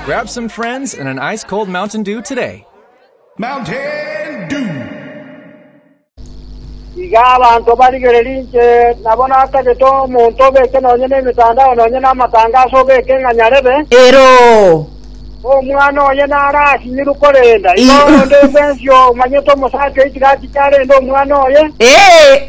Grab some friends and an ice cold Mountain Dew today. Mountain Dew. iga abanto barigererie inche nabo natagete omonto obeke nonye nemetandao nonye namatangaso obeke ng'a nyarebe Ero. omwana oye narasinyirwe korenda igo Ih. onde bwensi omanyete omosacha oyo tiga achiche arende omwana oye Ee.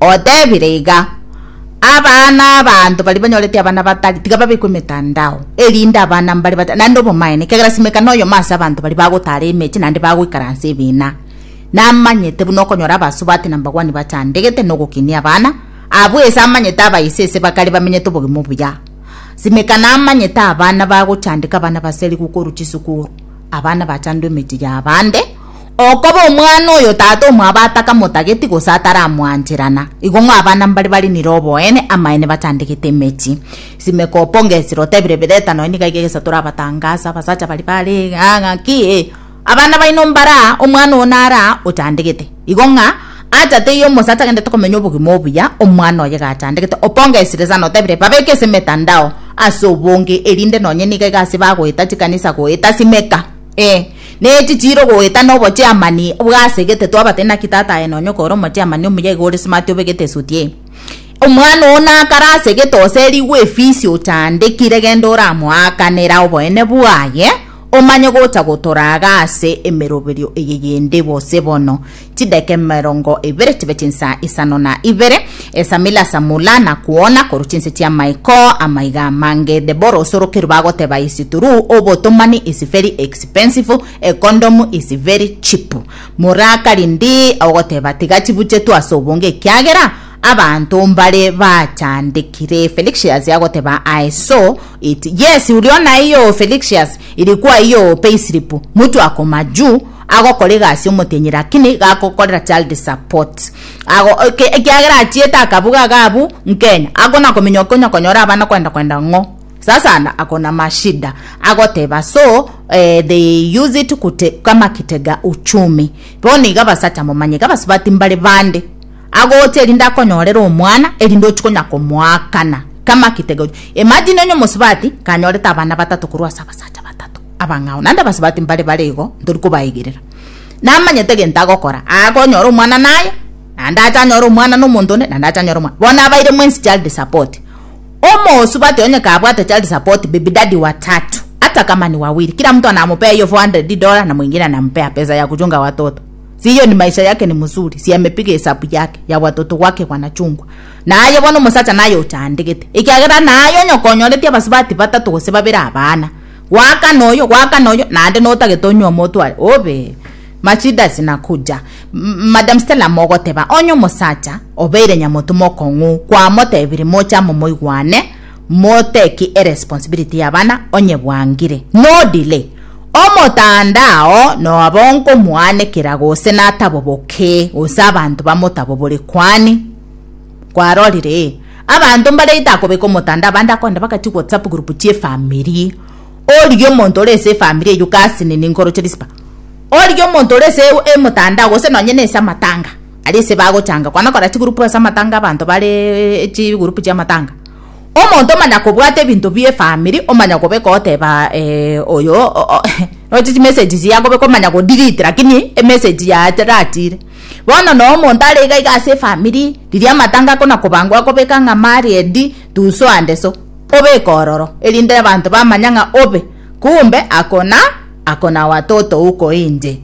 Otebire iga, Abana abanto baria banyorete abana batari, tiga babekwe emetandao, erinde abana mbare batari naende obomaene, ekiagera simeka noyomo ase abanto baria bagotaara emechie naende bagoikaransa ebiina. Namanyete buna okonyora abasubati na mbagwani bachandegete na ogokinia abana abwo ase amanyete abaise ase bakare bamenyete obogima obuya. Simeka namanyete abana bagochandeka abana baserigu korwa chisukuru, abana bachandwa emechie ya abande, Okoba omwana oyo tata omwabo atakamotageti gose ataramwanchera, na igo ng'a abana mbare bare nire oboene, amaene bachandegete emechie. Simeka oponge esira otebire bireta nonya niga iga egesato orabatangase abasacha baria bare aa ng'aki ee abana baino mbare aa omwana oo nare aa ochandegete. Igo ng'a acha teiyo omosacha agendete komenya obogima obuya omwana oye iga achandegete. Oponge esire sana otebire babeke ase emetandao ase obonge erinde nonya niga iga ase bagoeta chikanisa goeta simeka. Ee, nechi chire ogoeta na obochiamani bwasegete twabate naki tata aye nonye okore omochiamani omuya igo ore smart obegete esuti eye. Omwana oo nakare asegete oserigwe efisi ochandekire genda oramoakanera oboene bwaye omanye gocha gotoraga ase emeroberio eye yende bose bono. Chidaeka emerongo ebere chibe chinsa isano na ibere, esamila samula na kuona korwa chinse chi'amaiko amaiga amange. Deborah osorokerwe bagoteba is true obotomani is very expensive a condom is very cheap. Moraka rindi ogoteba tiga chibuchetwe ase obonge ekiagera abanto mbare bachandekire. Felixious agoteba aye so it yes uria onaiyo Felixious iri kwaiyo payslip mutwe akoma juu agokora egasi omotienyi lakini gakokorera child support ago eke ekiagera achiete akabuga iga abu nkenya akona komenya okonya konyora abana kwenda kwenda ng'o sasa anda akona mashida agoteba so eh, they use it kute, kama kitega uchumi bono iga basacha momanye iga basubati mbare bande agocha erinde akonyorera omwana erinde ochikonya komoakana kama kitega uchu- imagine onye omosubati kanyorete abana batato korwa ase abasacha batato Abang'ao naende abasubati mbare bare igo, ntori kobaigerera. Namanyete egento agokora, akonyora omwana naye, naende ache anyore omwana na omonto onde, naende ache anyore omwana. Bono abaire mwensi child support. Omosubati onye kabwate child support, baby daddy wa tatu, hata kama ni wawili, kila mtu anamupea hiyo 400 dola na mwingine anampea pesa ya kuchunga watoto. Si hiyo ni maisha yake ni mzuri, si amepiga hesabu yake ya watoto wake wanachungwa. Naye bono omosacha naye ochandegete. Ekiagera naye onye okonyoretie abasubati batatu gose babere abana. Goaka noyo, goaka noyo, naende notagete onywe omotware, obe Machidas nakuja. M Madam Stella mogoteba, onye omosacha obeire nyamotu mokong'u, kwamotebiri moche amo moigwane, mo take eresponsibility y'abana, onye bwangire, no delay. Omotanda oo noba onkomoanekera gose nataboboke, gose abanto bamotabobore kwani. kwarorire abanto mbare ita kobeka omotanda abande akonde bagati whatsapp group chie family origia omonto ore ase efamily eyio gasi nini nkoroche risiba origia omonto ore ase emotandao gose nonye nase amatanga aria ase bagochanga kwana kora chigroup ase amatanga abanto bareeee chigroup chia amatanga omonto omanya kobwata ebinto bie efamily omanya kobeka oteba oyo roche chimessage chiaye akobeka omanya kodelete lakini emessage yaye teratiire. Bono noo omonto are iga iga ase efamiri, riria amatanga akona kobangwa akobeka ng'a Mariedi tuso ande so, obeke ororo, erinde abanto bamanya ng'a obe, kumbe akona akona oa toto uko inche.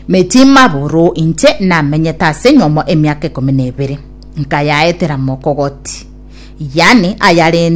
Mechie maboro inche namenyete ase enyomo emiaka ikomi na ebere, nkayaetera mokogoti, yani ayarende.